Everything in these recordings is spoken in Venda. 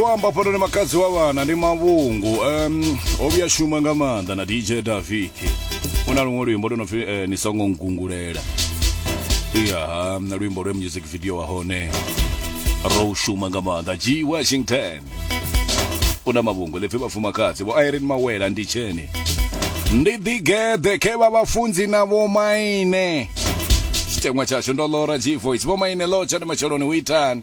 u amba fhano ni makadzi wa vhana ndi mavhungu um, o vhuya shuma nga maanḓa na dj daviki u na luṅwe luimbo lwo no pfi eh, ni songo ngungulela ya na luimbo lwe music video wa hone ro shuma nga maanḓa g washington u na mavhungu ḽipfi vhafumakadzi vho irene mawela ndi tsheni ndi ḓigeḓe khe vha vhafunzi na vhomaine tshiteṅwa tshashu ndo lora g voice vhomaine lotsha ndi matsheloni u itani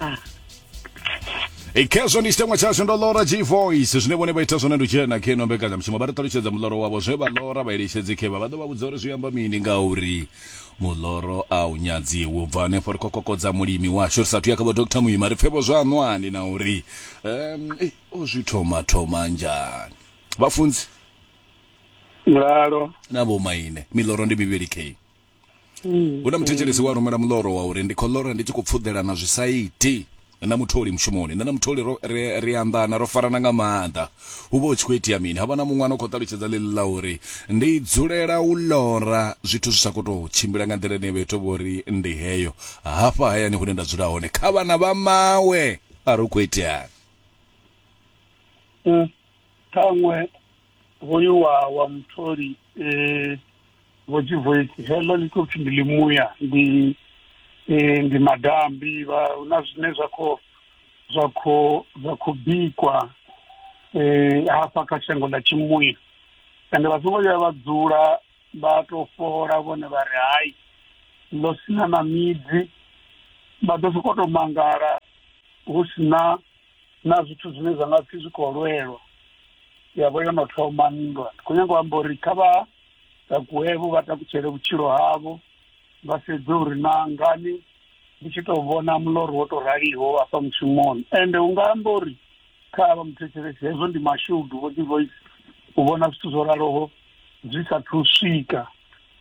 ah. e khezwo ndi tshiteṅwa tshashu ndo lora g voice zwine vhone vha ita zwone ndi tshena khe no mbekanyamushumo vha ri ṱalutshedza muḽoro wavho zwe vha lora vha eletshedzi khevha vha ḓo vha vhudza uri zwi amba mini ngauri muḽoro a u nyadziwi u bva hanefho ri khou kokodza mulimi washu ri sathu ya kha vho dr muima ri pfevho zwa ṅwani na uri um eh, o zwi thoma thoma njani vhafunzi mulalo na vhomaine miḽoro ndi mivhili khe mm, hu na muthetshelesi mm. wa rumela muloro wa uri ndi khou lora ndi tshi khou pfuḓela na zwisaiti na mutholi mushumoni nṋe na mutholi ri anḓana ro farana nga maanḓa hu vha hu tshi khou itea mini havha na muṅwana u khou ṱalutshedza ḽeḽi ḽa uri ndi dzulela u lora zwithu zwi sa khou tou tshimbila nga nḓila ine vha ita vhori ndi heyo hafha hayani hune nda dzula hone kha vhana vha mawe a ri u khou iteani mm, ṱhaṅwe hoyu wa wa mutholi eh vho Jivoisi heḽo ḽi khou pfhi ndi ḽimuya ndi eh ndi madambi vha hu na zwine zwa khou zwa khou zwa khou bikwa eh hafha kha shango ḽa tshimuya ende vha songo vhuya vha dzula vha tou fhola vhone vha ri hai ḽo sina na midzi vha ḓo sokou tou mangala hu si na na zwithu zwine zwa nga pfhi zwi khou lwelwa ya vho yo no thoma nndwa ndi khou nyanga u amba uri kha vha takuwevho vha takutshele vhutshilo havho vha sedze uri na ngani ndi tshi tou vhona muloro wo tou raliho afha mushumoni ende u nga amba uri kha vha muthetshelesi hezwo ndi mashudu vho dzi voice u vhona zwithu zwo raloho zwi sa thu swika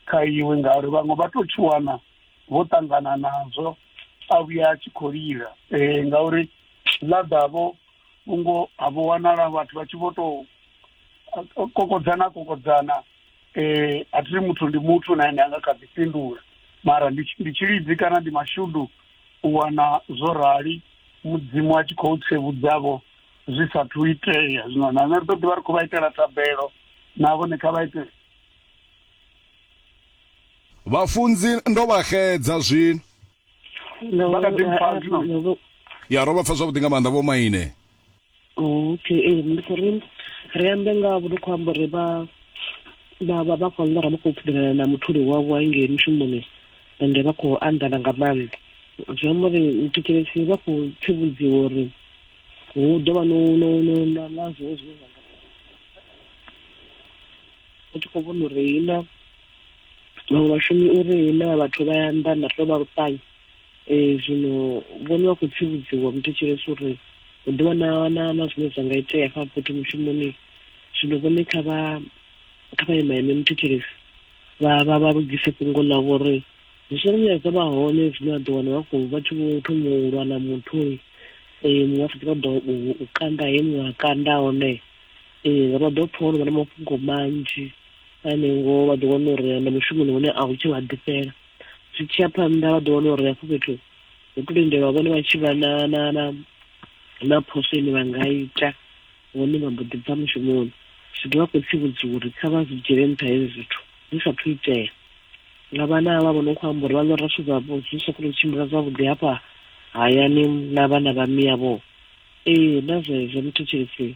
kha iwe ngauri vhaṅwe vha tou tshuwana vho ṱangana nazwo a vhuya a tshi khou lila um ngauri ḽa ḓavho vhungo ha vho wanala vhathu vha tshi vho tou kokodzana kokodzana um a thi muthu ndi muthu na ene a nga kha ḓi fhindula mara ndi tshilidzi kana ndi mashudu u wana zwo rali mudzimu a tshi khou tsevhudzavho zwi sathu itea zwino na nṋe ri ḓo ḓivha ri khou vha itela thabelo na vhone kha vha ite Vhafunzi ndo vha xedza zwino. Vha kha ḓi mpfa zwino. Ya ro vha pfa zwavhuḓi nga maanḓa vho maine. Okay, ee ndi khou ri ri ambe nga vho khou amba uri vha vha vha vha khou ḽora vha khou pfudelana na mutholi wavho ngei mushumoni ende vha khou anḓana nga maanḓa zwi amba uri thetshelesi vha khou tsivhudziwa uri hu ḓo vha no no no na na zwiṅwe zwine zwa nga u tshi khou vhona uri hina vhaṅwe vhashumi uri hina vhathu vha ya nḓa nda tou vha luṱanya um zwino vhone vha khou tsivhudziwa muthetshelesi uri hu ḓi wana na na zwine zwa nga itea fha fhethu mushumoni zwino vhone kha vha kha vha ima ime muthetshelesi vha vha vha lugise fhungo ḽavho uri zwi songo vhuya zwa vha hone zwine vha ḓo wana vha khou vha tshi vho thoma u lwa na muthu um muṅwe a sa ḓo u kanda he muṅwe a kanda hone ee vha ḓo pfha uri vha na mafhungo manzhi ane ngoho vha ḓo wana uri na mushumoni hune a hu tshe vha ḓifhela zwi tshi ya phanḓa vha ḓo wana uri hafho fhethu hu to lindelwa vhone vha tshi vha na na na na phoso ine vha nga ita hone vha mbo ḓi bva mushumoni zwi ḓo vha khou tsivhudziwa uri kha vha zwi dzhiele nṱha hezwi zwithu zwi sa thu itea nga vhana havha vho no khou amba uri vha ḽora zwithu zwavho zwi sa khou tshimbila zwavhuḓi hafha hayani na vhana vha miyavho ee na zwezwo muthetshelisi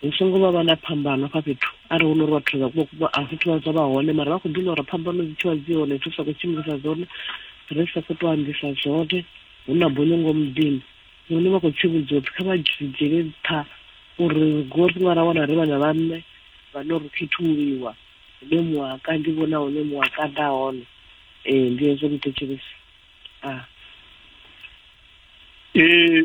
hu songo vha vha na phambano hafha fhethu arali hu no uri vhathu a fhethu vha zwa vha hone mara vha khou ḓivha uri phambano dzi tshivha dzi hone dzi sa khou tshimbilisa dzone ri sa khou tou ambisa zwone hu na bono ngo muḓini hune vha khou tshi vhudziwa pfhi kha vha dzhiele nṱha uri ri go ri nga ra wana ri vhana vha nṋe vhane ri khethuliwa hune muwaka ndi vhona hune muwaka nda hone ee ndi hezwo muthetshelesi a ah. ee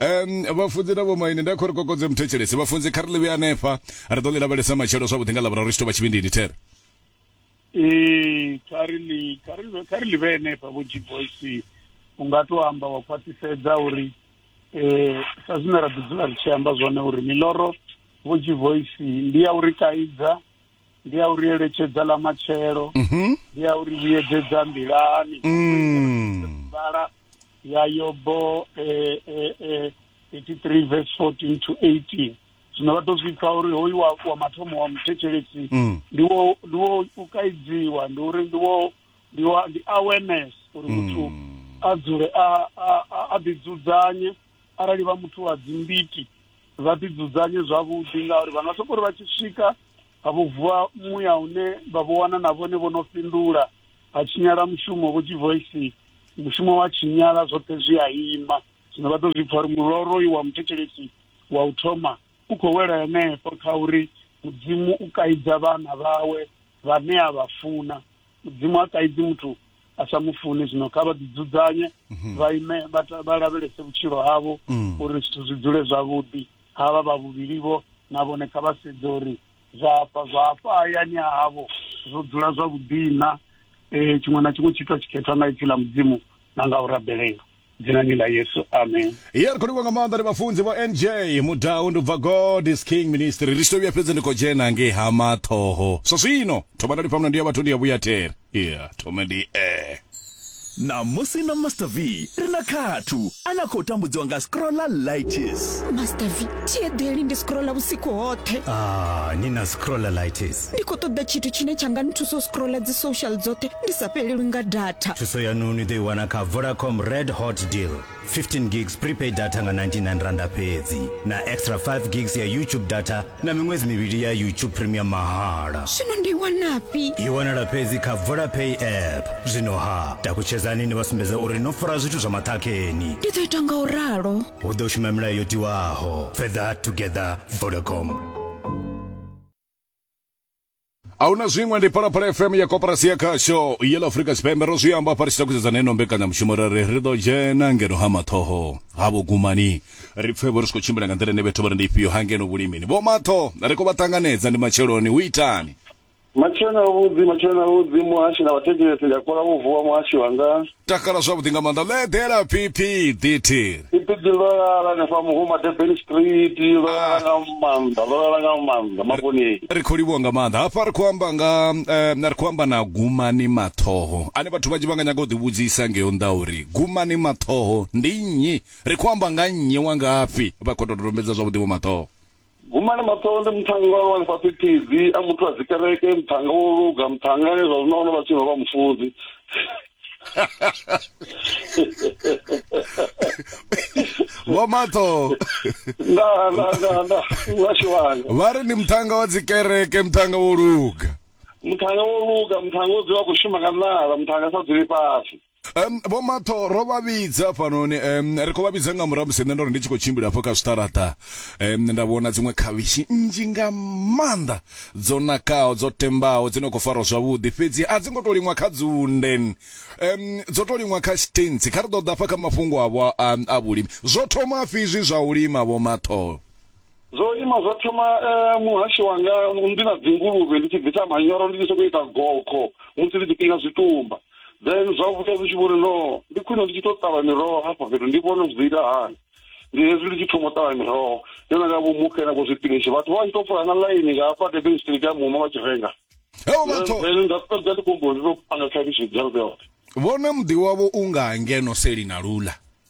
um vhafunzi na vhomaine nda khori kokodze muthetshelesi vhafunzi kha ri ḽi vhuya hanefha ri ḓo ḽi lavhelesa matshelo zwavhuḓi nga lavhura ri tshi tou vha tshivhindini there ee kha ri ḽi kha ri kha ri ḽi vhe hanefha vho g boys u nga to amba wa khwaṱhisedza uri eh sa zwine ra ḓi dzula ri tshi amba zwone uri miloro vho g voice ndi ya uri kaidza ndi ya uri eletshedza ḽa matshelo mhm. ndi ya uri vhuyedzedza nḓilani mm. vhala ya yobo eh, eh, eh, 83 verse 14 to 18 zwino vha to zwi pfa uri hoyu wa, wa mathomo wa muthetshelesi mm. ndi wo ndi wo u kaidziwa ndi uri ndi wo ndi wa ndi awareness uri muthu mm. a dzule a a a ḓidzudzanye arali vha muthu wa dzimbiti vha ḓi dzudzanye zwavhuḓi ngauri vha nga soko ri vha tshi swika ha vho vuwa muya une vha vho wana na vhone vho no fhindula ha tshinyala mushumo vho tshi voice mushumo wa tshinyala zwoṱhe zwi a ima zwino vha ḓo zwi pfha uri muloro uyu wa muthetshelesi wa u thoma u khou wela henefho kha uri mudzimu u kaidza vhana vhawe vhane a vha funa mudzimu ha kaidzi muthu a sa mu funi zwino kha vha ḓidzudzanye mhm. vha ime vha lavhelese vhutshilo havho mm. uri zwithu zwi dzule zwavhuḓi havha vha vhuvhilivho na vhone kha vha sedze uri zwafha zwafha hayani havho zwo dzula zwavhuḓina um tshiṅwe na tshiṅwe tshitwa tshikhethwa nga ipfi ḽa mudzimu na nga u rabelela dzinani ḽa yesu amen ya ri khou livha nga maanḓa ri vhafunzi vho nj mudau ndi u bva god is king ministry ri tshi to vhuya fhedzi ndi khou dzhena ngei ha maṱhoho zwa zwino thoma nda lifhamuna ndi ya vhathu ndi ya vhuyathera ya thome ndi e Ṋamusi na Master V ri na khathu ane a khou tambudziwa nga scrollalitis. Master V, thi eḓeli ndi scrolla vhusiku hoṱhe. Ah, ni na scrollalitis. ndi khou ṱoḓa tshithu tshine tsha nga nthusa u scrolla dzi social dzoṱhe ndi sa fhelelwi nga data thuso yanu ni ḓo i wana kha vodacom red hot deal 15 gigs prepaid data nga 99 randa fhedzi na extra 5 gigs ya youtube data na miṅwedzi mivhili ya youtube premium mahala zwino ndi i wanafhi i wanala fhedzi kha vodapay app zwino ha takutshedzani ni vha sumbedza uri no fara zwithu zwa maṱhakheni ndi ḓo ita nga u ralo hu ḓo shuma milayo yo tiwaho further together vodacom ahuna zwiṅwe ndi phalaphala fm ya koporasi ya khasho yela afurika tshipembe ro zwi amba fari tshitakuzedza neno mbekanyamushumo ra ri ri ḓo dzhena ngeno ha mathoho ha vhogumani ri pfe vho ri tshi khou tshimbila nga nḓila ine vhethu vha ri ndi ifhio ha ngeno vhulimini vho matho ri khou vha ṱanganedza ndi matsheloni hu itani matshelo na vhudzi matshelo na vhudzi muhashi na vhathetshelesi ndi a kola vho vuwa muhashi wanga takala zwavhuḓi nga maanḓa ḽo eḓela pipi ḓithi pipi ḓi ḽo lala hanefha muhuma durban street ḽo lala ah. nga maanḓa ḽo lala nga maanḓa mabonei ri khou livhuwa nga maanḓa hafha ri khou amba nga eh, ri khou amba na gumani maṱhoho ane vhathu vhanzhi vha nga nyaga u ḓivhudzisa ngeyo nḓa uri gumani maṱhoho ndi nnyi ri khou amba nga nnyi wa ngafhi vha khou dododombedza zwavhuḓi vho maṱhoho guma na maṱolo ndi muṱhannga wa lwani fhasi phidzi a muthu a dzikereke muṱhannga wo luga muṱhannga ane zwa zwino ono vha tshino vha mufunzi vho maṱo vha ri ndi muṱhannga wa dzikereke muṱhannga wo luga muṱhannga wo luga muṱhannga wo dzula khou shuma nga nala muṱhannga sa dzuli fhasi Um, vho matho ro vha vhidza hafhanoni um, ri khou vha vhidza nga murahu musi nṋe ndo ri ndi tshi khou tshimbila hafho kha zwiṱaraṱa um, nda vhona dziṅwe khavhishi nnzhi nga maanḓa dzo nakaho dzo tembaho dzi no khou farwa zwavhuḓi fhedzi a dzi ngo tou liṅwa kha dzunden um, dzo tou liṅwa kha stentsi kha ri ḓo ḓa fha kha mafhungo avho a, a vhulimi zwo thoma fhi izwi zwa u lima vho matho zwo ima zwa thoma eh, muhasho wanga ndi na dzinguluvhe ndi tshi bvisa manyoro ndi tshi sokou ita gokho musi ndi tshi kiḽina zwitumba then zwa vhuya zwi tshi vhori no ndi khwine ndi tshi tou ṱavha miroho hafha fhethu ndi vhone zwi ḓo ita hani ndi hezwi ndi tshi thoma u ṱavha miroho ndi na nga vho mukhe na vho zwipinishi vhathu vha vha tshi tou fola na ḽaini nga hafha durban street ya mumo vha tshi renga heo vhathu then nda fhedza ndi khombo ndi tou panga khavhishi dza lubela vhone muḓi wavho u nga ngeno selina lula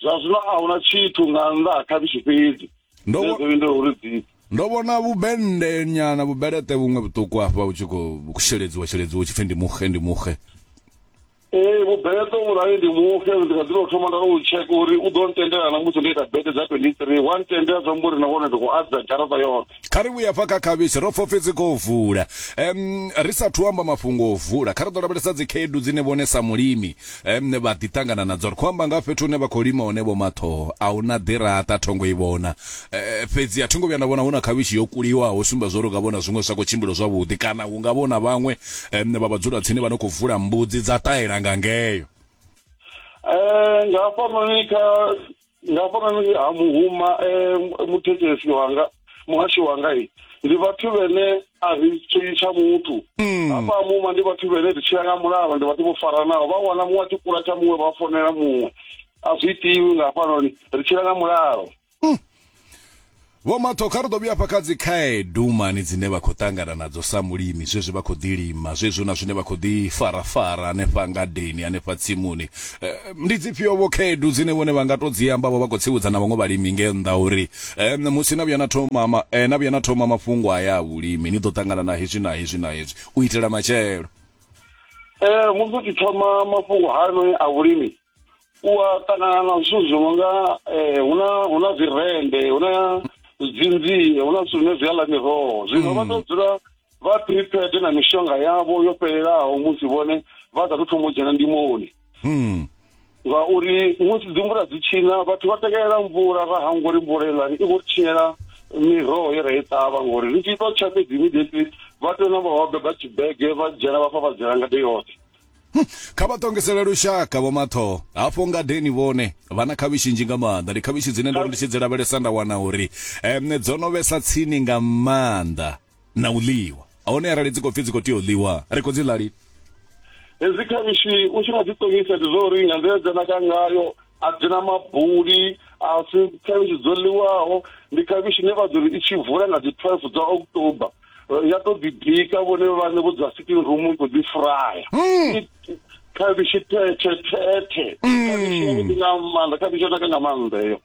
zwa zwino a huna tshithu nga nnḓa ha khavhishi fhedzi ndo ndo uri dzi ndo vhona vhubende nyana vhubelete vhuṅwe vhuṱuku afha u tshi khou sheledziwa sheledziwa u tshi pfhi ndi muxe ndi muxe ee vhubelete vhurali ndi muxe ndi kha dzilo thoma nda u tsheka uri u ḓo ntendela na musi ndo ita bete dza 23 wa ntendela zwa mbo ri nahone ndi khou adza garaṱa yoṱhe kha ri vhuya fa kha khavhishi ro pfopfi dzi khou vula um ri sathu amba mafhungo o vula kha ri ḓo lavhelesa dzi khaedu dzine vhone sa mulimi um vha ḓi ṱangana nadzo ri khou amba nga fhethu hune vha khou lima hone vho mathoho a hu na ḓiraṱa thongo i vhona um fhedzi a thingo vhuya nda vhona hu na khavhishi yo kuliwaho sumba zwo ri nga vhona zwiṅwe zwa khou tshimbilo zwavhuḓi kana hu nga vhona vhaṅwe um vha vhadzula tsini vha no khou vula mbudzi dza ṱahela nga ngeyo um nga hafhanoni kha nga hafhanani ha muhuma um muthetshelesi wanga muhashi wanga ndi vhathu vhene a ri tshiyi tsha muthu mm. hafha muhuma ndi vhathu vhene ri tshila nga mulalo ndi vhathu vho faranaho vha wana muṅwe a tshi kula tsha muṅwe vha fonela muṅwe a zwi itiwi nga hafhanoni ri tshila nga mulalo mm. Vho Matho, Kha ri ḓo vhuya hafha kha dzi khaedu mani dzine vha khou ṱangana nadzo sa mulimi zwezwi vha khou ḓi lima zwezwi hu na zwine vha khou ḓi farafara hanefha ngadeni hanefha tsimuni. Ndi dzifhio vho khaedu dzine vhone vha nga tou dzi amba vho vha khou tsivhudza na vhaṅwe vhalimi nge nnḓa uri musi na vhuya na thoma ma, na vhuya na thoma mafhungo aya a vhulimi ni ḓo ṱangana na hezwi na hezwi na hezwi u itela matshelo? Musi u tshi thoma mafhungo hayanoni a vhulimi u a ṱangana na zwithu zwi no nga eh, hu na hu na zwirende hu na dzinzie hu na zwithu zwine zwi a ḽa miroho zwino vha tou dzula vha prepared na mishonga yavho yo fhelelaho musi vhone vha sa tou thoma u dzhena ndimoni Mm. ngauri musi dzi mvula dzi tshina vhathu vha takalela mvula ra hangwa uri mvula iḽani i khou tshinyela miroho ye ra i ṱavha ngori ri tshi ita tsha fhedzi immediately vha tea u namba vha beba tshibege vha dzhena vha fafadzela ngade yoṱhe Hm, kha vha ṱongisele lushaka vho mathoho hafho ngadeni vhone vha na khavhishi nzhi nga maanḓa ndi khavhishi dzine ndo ri ndi tshi dzi lavhelesa nda wana uri um dzo no vhesa tsini nga maanḓa na u ḽiwa hone arali dzi khou pfi dzi khou tea u ḽiwa ri khou dzi ḽa lini hezwi khavhishi u tshi nga dzi ṱongisa ndi zwa uri nga nḓila dza naka ngayo a dzi na mabuli a si khavhishi dzo ḽiwaho ndi khavhishi ne vha ḓo ri i tshi vula nga dzi twelve dza october eh, ya to ḓibika vhone vhane vho dza sitting room i khou ḓi fraya hmm. khavhishi thethe thethe hmm. khavhishi yavhuḓi nga maanḓa khavhishi yo naka nga maanḓa eyo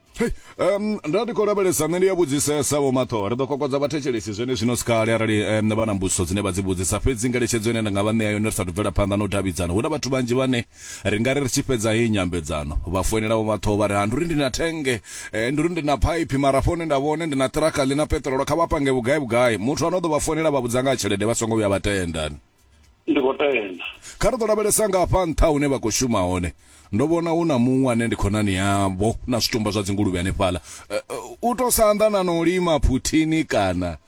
um nda ndi khou lavhelesa nṋe ndi ya vhudzisesa vho maṱho ri ḓo kokodza vhathetshelesi zwene zwino si kale arali um vha na mbudziso dzine vha dzi vhudzisa fhedzi ngeletshedzo ine nda nga vha ṋea yone ri sa tou bvela phanḓa na u davhidzana hu na vhathu vhanzhi vhane Ri nga ri ri tshi fhedza heyi nyambedzano, vha foinela vho Mathoho vha ri, Ha, ndi uri ndi na thennge, eh, ndi uri ndi na phaiphi, mara hafha hune nda vha hone ndi na ṱirakha ḽi na peṱirolo, kha vha pange vhugai-vhugai. Muthu ane o ḓo vha foinela a vha vhudza nga ha tshelede vha songo vhuya vha tenda. Ndi khou tenda. Kha ri ḓo lavhelesa nga hafha nṱha hune vha khou shuma hone. Ndo vhona hu na muṅwe ane ndi khonani yavho, na zwitumba zwa dzinguluvhe hanefhaḽa. Eh, u tou sa anḓana na u lima phuthini kana.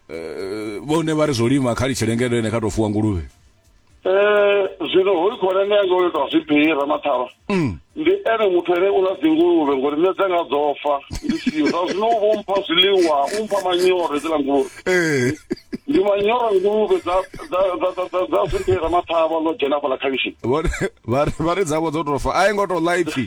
Eh, vhone vha ri zwo lima kha litshelengedwene kha tou fuwa nguluvhe. Eh, zwino hoyu khonani yanga uyo tou zwibhiri ramathavha mm. ndi ene muthu ene u ḽa dzinguluvhe ngori nṋe dzanga dzo fa ndi siyo zwa zwino u vho mpha zwiḽiwa u mpha manyoro edziḽa nguluvhe eh. ndi manyoro nguluvhe dza zwibhiri ramathavha ḽo dzhena fhaḽa khavishini vha ri dzavho dzo tou fa a i ngo tou ḽa ipfhi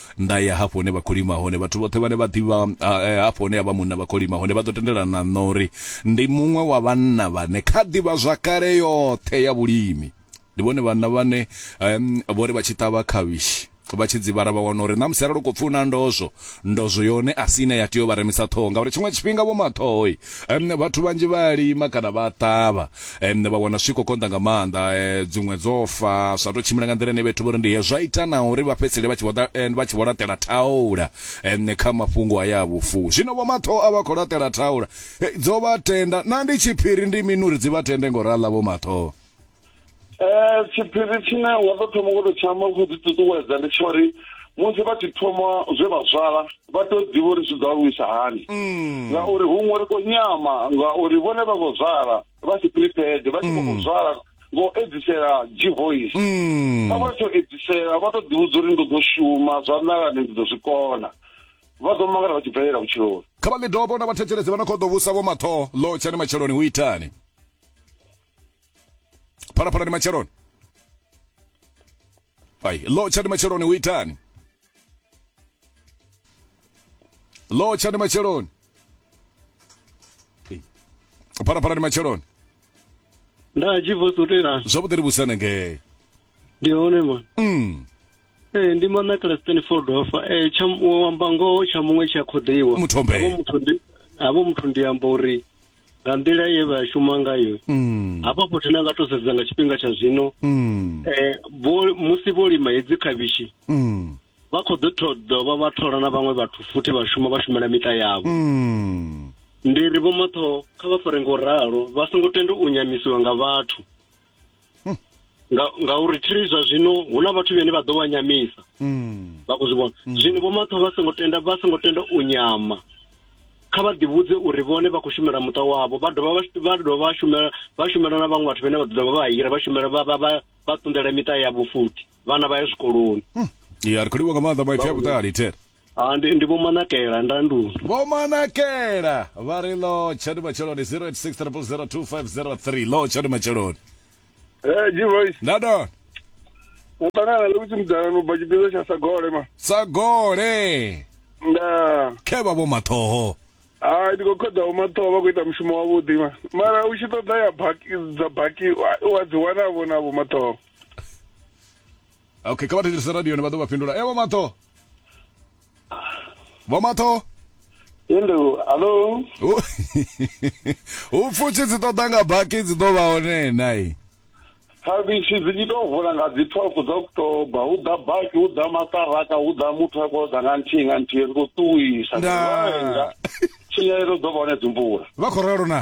nda ya hafho hune vha khou lima hone vhathu vhoṱhe vhane vha ḓivha eh, hafho hune havha munna vha khou lima hone vha ḓo tendelana na uri ndi muṅwe wa vhanna vhane kha ḓivha zwakale yoṱhe ya vhulimi ndi vhone vhanna vhane um, vho ri vha tshi ṱavha khavhishi vha tshi dzivhala vha wana uri na musi arali u khou pfi una ndozwo ndozwo yone a si ine ya tea u vha remisa ṱhoho ngauri tshiṅwe tshifhinga vho maṱhohoi um, vhathu vhanzhi vha a lima kana vha a ṱavha um, vha wana zwi khou konḓa nga maanḓa um dziṅwe dzo fa zwa tou tshimbila nga nḓila ine vhethu vho ri ndi he zwa ita na uri vha fhedzisele vha tshi vho eh, laṱela thaula um kha mafhungo aya a vhufu zwino vho matho a vha khou laṱela thaula eh, dzo vha tenda na ndi tshiphiri ndi mini uri dzi vha tende ngo rala vho matho um tshiphiri tshine wa ḓo thoma ngo to tshiamba khou ḓi ṱuṱuwedza ndi tsha uri musi vha tshi thoma zwe vha zwala vha tou ḓivha uri zwi ḓo aluisa hani mm. ngauri huṅwe ri khou nyama ngauri vhone vha khou zwala vha si prepared vha tshi khou mm. zwala ngo edzisela g-voice mm. vha vha tsho edzisela vha tou ḓivhudza uri ndi ḓo shuma zwa nalani ndi ḓo zwi kona vha ḓo mangala vha tshi bvelela vhutshiloni kha vha midobo na vhathetshelezi vha no khou ḓo vhusa vho matho ḽo tshani matsheloni hu itani phalaphalani matsheloni Ai, lo tshani matsheloni u itani? Lo tshani matsheloni. Phalaphalani matsheloni. Nda tshi vusa u tela. Zwavhuḓi ri vhusana ngei. Ndi hone man. Mm. Eh ndi mana kala Stanford ofa. Eh tsha wamba ngoho tsha muṅwe tsha khoḓiwa. Muthu ombe. Havho muthu ndi havho muthu ndi amba uri nga nḓila ye vha shuma ngayo mm. hafha fhethu na nga to sedza nga tshifhinga tsha zwino mm. eh, musi vho lima hedzi khavhishi mm. vha khou ḓo dovha vha thola na vhaṅwe vhathu futhi vha shuma vha shumela miṱa yavho ndi ri vhomaṱhoho kha vha fare ngo ralo vha songo tenda u nyamisiwa nga vhathu hmm. nga ngauri thiri zwa zwino hu na vhathu vhene vha ḓo vha nyamisa hmm. vha khou zwi vhona hmm. zwino vho maṱho vha songo tenda vha songo tenda u nyama kha vha ḓivhudze uri vhone vha khou shumela muṱa wavho vha dovha vha dovha shumela vha shumela na vhaṅwe vhathu vhane vha ḓo vha hira vha shumela vha vha vha ṱundela miṱa yavho futhi vhana vha ya zwikoloni ya ri khou livha nga maanḓa maipfi a vhuṱali thera Ah, ndi, ndi Vho Manakela Ndanduni. Vho Manakela vha ri lo tshani matsheloni 0860002503 lo tshani matsheloni. Eh, G voice. Ndadona Wo ṱangana le kutsi mudala no bva tshipiḓa tsha Sagole ma. sa gole Nda. khe vha vho mathoho. Ah, ndi khou khoḓa vho mathoho vha khou ita mushumo wavhuḓi ma. Mara u tshi ṱoḓa ya baki dza baki wa- wa dzi wana vho na vho mathoho. Okay, kha vha thetshelese radio ni vha ḓo vha fhindula. Evo mathoho. vho matho Hello, hello. U- u pfushi dzi ṱoḓa nga baki dzi ḓo vha hone nai Khavhishi dzi tshi tou vula nga dzi 12 dza October, hu ḓa baki, hu ḓa maṱaraka, hu ḓa muthu a khou ḓa nga nthihi nga nthihi ri khou ṱuwisa. Nda. Tshinyalelo dzo vha hone dzi mvula. vha khou ralo na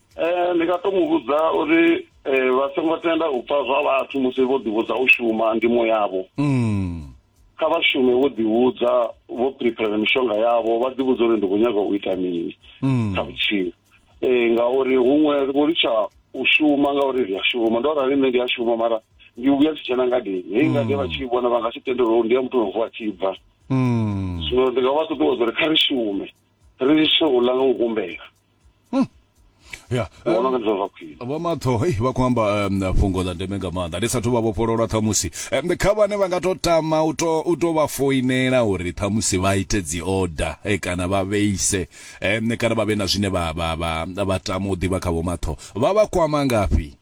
Eh, ndi nga to mu vhudza uri eh, vha songo tenda u pfa zwa vhathu musi vho ḓivhudza u shuma ndimo yavho Mm. kha vha shume vho ḓivhudza vho prepare mishonga yavho vha ḓivhudza uri ndi khou nyaga u ita mini Mm. kha vhutshilo eh ngauri huṅwe ri vho litsha u shuma ngauri ri a shuma ndo rali nṋe ndi a shuma mara ndi vhuya si tshena ngadeni hei ngade vha tshi i vhona vha nga si tendelwe uri ndi ya muthu no vuwa tshi bva Mm. zwino ndi nga vha ṱuṱuwedza uri kha ri shume ri litshe u ḽa nga u humbela hmm. ya vhona nga zwa khwine vho matho hey vha khou amba um, fhungo ḽa ndeme nga maanḓa ndi sathu vha vhofhololwa ṱhamusi um, kha vhane vha nga to tama u to u to vha foinela uri ṱhamusi vha ite dzi order eh, kana vha vheise um, kana vha vhe na zwine vha vha vha vha tama u ḓivha kha vho matho vha vha kwama ngafhi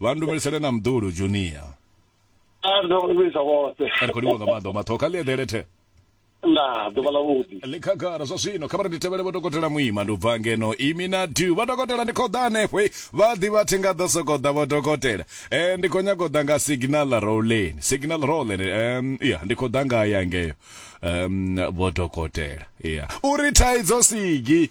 vha ndumelisele na mdulu junior a ndo vhisa vhoṱhe ri khou livhuwa nga maanḓa maṱhoho kha ḽi eḓele the nda ḓuvha ḽa vhuḓi ḽi khagala zwa zwino kha vha ri ndi tevhele vho dokotela muima ndi u bva ngeno imi na du vha dokotela ndi khou ḓa hanefho eh. vha ḓi vha thi nga ḓo sokou ḓa vho dokotela um ndi khou nyanga u ḓa nga signal roleni signal roleni um ya ndi khou ḓa nga ya ngeyo um vho dokotela ya uri thaidzo sigi